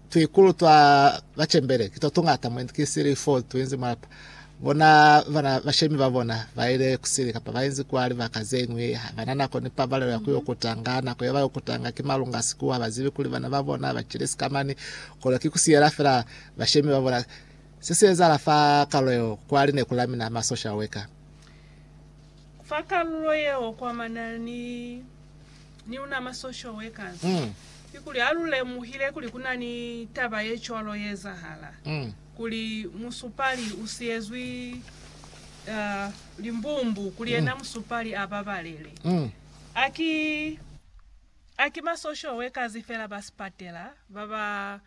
tuikulu twa bacembele ki twa tungata mwendi ki sili fo tuinzi mulapa bona bana bashemi ba bona baile kusili kapa bainzi kwa libaka zeñwi habana nako ni pabalelo ya kuyo kutanga nako yaba yo kutanga ki malunga siku habazibi kuli bana ba bona bacili sikamani kono ki kusiyela fela bashemi ba bona se se ezala fa kalulo yeo kwa lineku la mina ma social worker fa kalulo yeo kwa manani Ni una mwa social workers, kikuli ha lu lemuhile kuli ku na ni taba ye cwalo ye ezahala, kuli musupali u siyezwi limbumbu, kuli yena musupali a babalele. A ki, a ki ma social workers fela ba sipatela ba ba.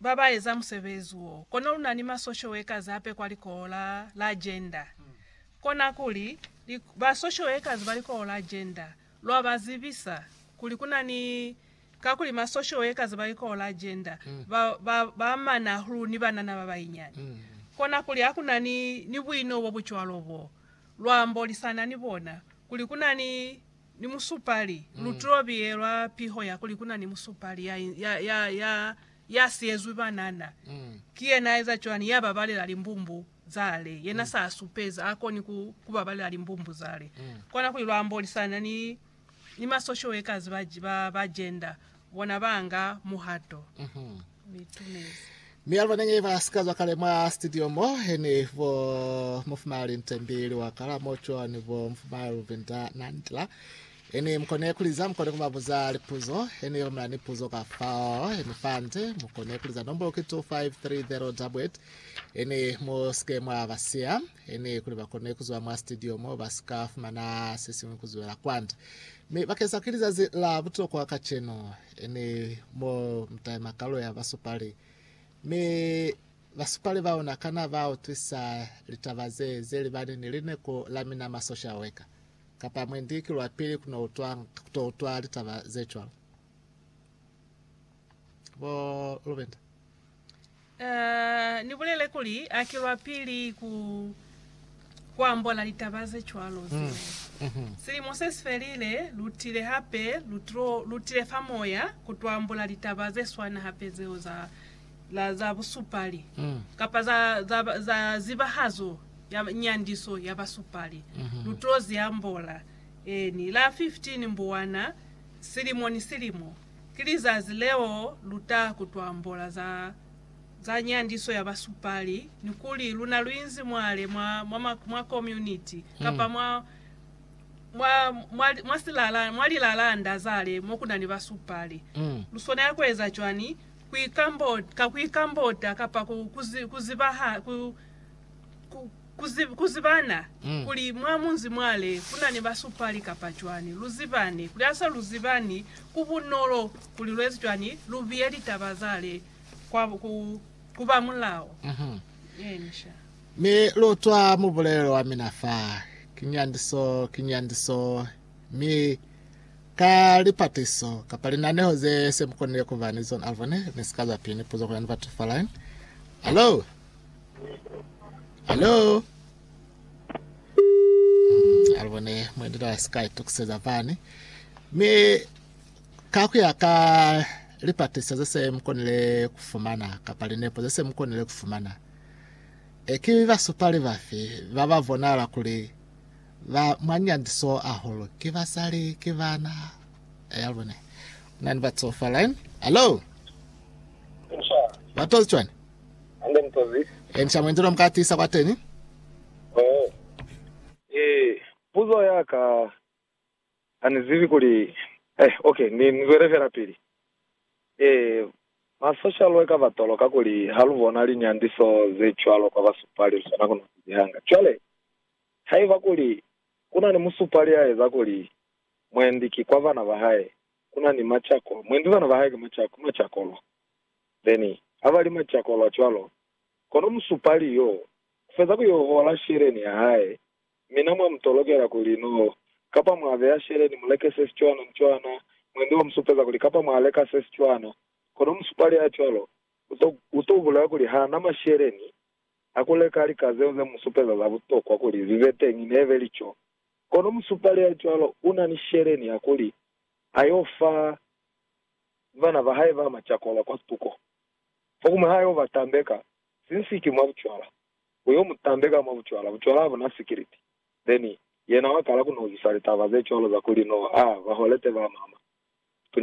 ba ba eza musebezi wo. Kono lu na ni masoshoekazi hape kwa likoho la, la jenda. Kona kuli, li, basoshoekazi ba likoho la jenda, lwa ba zibisa kuli ku na ni, kakuli masoshoekazi ba likoho la jenda ba, ba, ba amana hahulu ni banana ba bainyani. Kona kuli ha ku na ni, ni buino bo bu cwalo bo lwa ambolisana ni bona, kuli ku na ni ni musupali, lu to biyelwa piho ya kuli ku na ni musupali ya, ya, ya, ya, ya siyezwi banana. Ki yena a eza cwani? Ya babalela limbumbu za le. Yena sa supeza a koni ku, ku babalela limbumbu za le. Kona kuli lwa ambolisana ni, ni masoshoekazi ba, ba, ba jenda. bona ba nga muhato. Mi itumezi. Mi aluba nenge ba sika zwa kale mwa studio mo, heni bo Mufumai Lintembi Liwakala mo cwa ni bo Mufumai Luvinda Nandila. Heni mukone kuliza, mukone kubabuza lipuzo, heni romela ni puzo ka fao, heni fande, mukone kuliza nombolo ki 25308, heni mu sike mwa basiya, heni kuli bakone kuzwa mwa studio mo ba sika fumana sesiñwi kuzwela kwande. Mi bakeza ki lizazi la butokwa kacenu, emi mo mutaima kalo ya basupali. Mi basupali baona kana ba utwisa litaba ze, ze libani ni lineku la mina ma social worker? Kapa mwendi ki lwa pili kuno utwa, kuto utwa litaba ze cwalo. Bo Lubinda. Uh, ni bulele kuli a kilwa pili ku kuambola litaba ze cwalo zine. Silimo se si felile, lutile hape, lutlo, lutile fa moya kutuambola litaba ze swana hape zeo za la za busupali kapa za za, za zibahazo ya nyandiso ya basupali. Lutlo ziambola eni la 15 mbuwana silimo ni silimo. Ki lizazi leo lu ta kutwa mbola za, za nyandiso ya basupali, ni kuli luna lu inzi mwale mwa, mwa, ma, mwa komuniti, kapa mwa, mwa, mwa, mwa, silala, mwa lilalanda zale mo ku na ni basupali. Lu swanela ku eza cwani? Ku ikambota, ka ku ikambota, kapa ku, ku, zi, ku zibaha, ku, Ku, ku, ku zibana kuli mwa munzi mwale ku na ni basupali kapa cwani, lu zibani kuli ha sa lu zibani, ku bunolo kuli lu eze cwani, lu biye litaba zale kwa, ku, ku ba mulao. Encia. Mi lu utwa mubulelelo wa mina fa, Ki nyandiso, ki nyandiso. Mi ka lipatiso, kapa linaneho ze se mu konile ku ba ni zona, alubone, ni si ka za pili ni puzo ku ya ni batu fa line. Hallo? Hello? Hmm, alibone mwendelo wa Sky tukuseza fani. Mi kakuya ka lipatisa zese mukonile kufumana kapa linepo zese mukonile kufumana eki basupali bafi ba ba bonala kuli ba mwanyandiso aholo ki basali ki bana yalibone eh, nani batsofa line hello batozi chwani Kenca mwendi lo mu ka tiisa kwateni. Puzo ya ka, Ha ni zibi kuli. Eh, ok, ni zwele fela pili. Eh, masosha lu eka batolo kakuli ha lu bona linyandiso ze cwalo kwa basupali, lu swana ku no sizihanga. Cwale, haiba kuli ku na ni musupali ya eza kuli mwendi ki kwa bana ba hae, ku na ni macako, mwendi bana ba hae ki macako, macako lwa. Beni, haba li macakolwa cwalo, kono musupali yo ufeza ku yo hola sheleni ya hae, mi na mwa mu tolokela kuli no kapa mwa beya sheleni mu leke se si cwana ni cwana, mwendi wa mu supeza kuli kapa mwa leka se si cwana, kono musupali ya cwalo uto, uto bulela kuli ha na masheleni a ku leka lika zeo ze mu supeza za butokwa kuli zi be teñi, nebe li co. Kono musupali ya cwalo una ni sheleni ya kuli a yo fa. ni bana ba hae ba macakola kwa tuko. Fokuñwi ha yo ba tambeka sinsiki mwa bucwala, u yo mu tambeka mwa bucwala. Bucwala ha bu na sikiliti. Then, yena wa kala ku nohisa litaba ze cwalo za kuli no a ba holete ba mama.